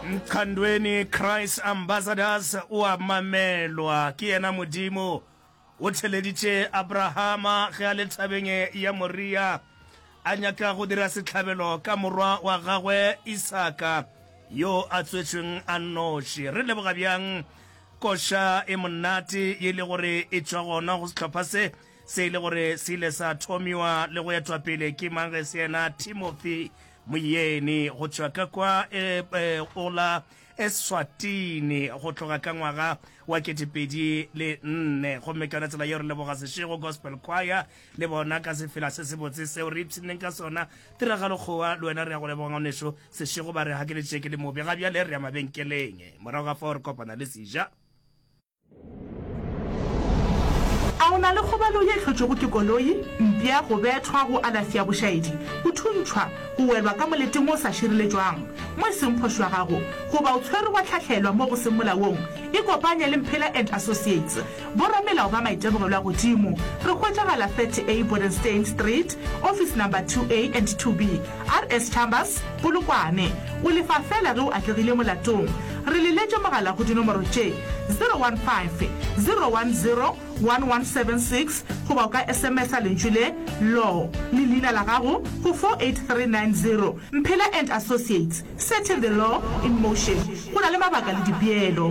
Nkhandweni Christ Ambassadors o a mamelwa ke yena Modimo. O theleditše Abrahama ge a le thabeng ya Moria a nyaka go dira sehlabelo ka morwa wa gagwe Isaka yo a tswetšweng a nnoši. Re leboga bjang koša e monate ye e le gore e tšwa gona go sehlopha se Se e le gore se ile sa thomiwa le go etwa pele ke mang ge se yena Timothy Moyeni go tšwa ka kwa e, e, o la Eswatini go tloga ka ngwaga wa ketepedi le nne. Gomme ka yona tsela yeo re leboga Seshego Gospel Choir le bona ka sefela se se botse seo re ipshinneng ka sona. Tiragalo Kgowa le wena re ya go leboga ngwaneso Seshego ba re ga ke le tšeke le mobe ga bjale re ya mabenkeleng morago ga fao re kopana le Sija. A o na le kgobalo ye e hlotšwego ke koloi, mpša, go bethwa, go alafi ya bošaedi, go thuntšhwa, go welwa ka moleteng o sa šireletšwang mo e seng phošo ya gago, goba o tshwerwe wa hlahlelwa mo go seng molaong? Ikopanye le Mphela and Associates, boramelao ba maitemogelo a godimo. Re hwetšagala 30A Bodenstein Street, office number 2A and 2B. RS Chambers, Polokwane, o lefa feela ge o atlegile molatong. Re le letše mogala go dinomoro tše, 015 010 1176 goba o ka SMS-a lentšu le, Law, le leina la gago go 48390. Mphela and Associates, Setting the Law in Motion, go na le mabaka le dipeelo.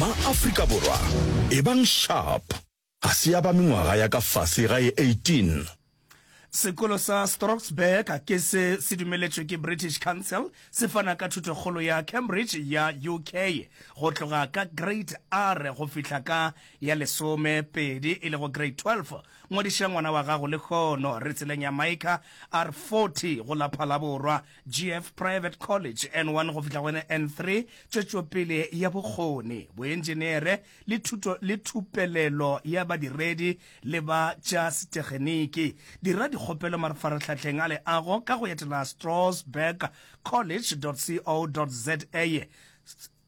MaAfrika Borwa, ebang sharp ga se ya ba mengwaga ya ka fase ga e 18. Sekolo sa Stroksburg ke se se dumeletšwe ke British Council, se fana ka thuto-kgolo ya Cambridge ya UK go tloga ka Grade R go fihla ka ya lesome pedi e lego Grade 12. Ngwadiša ngwana wa gago lehono re tseleng ya Micah R40 go la Phalaborwa GF Private College N1 go fihla go yone N3, tšwetšopele ya bokgoni, boenjenere le thuto le thupelelo ya badiredi le ba tša setegeniki. Dira dikgopelo marfarahlahleng a leago ka go etela Strasbourg College.co.za.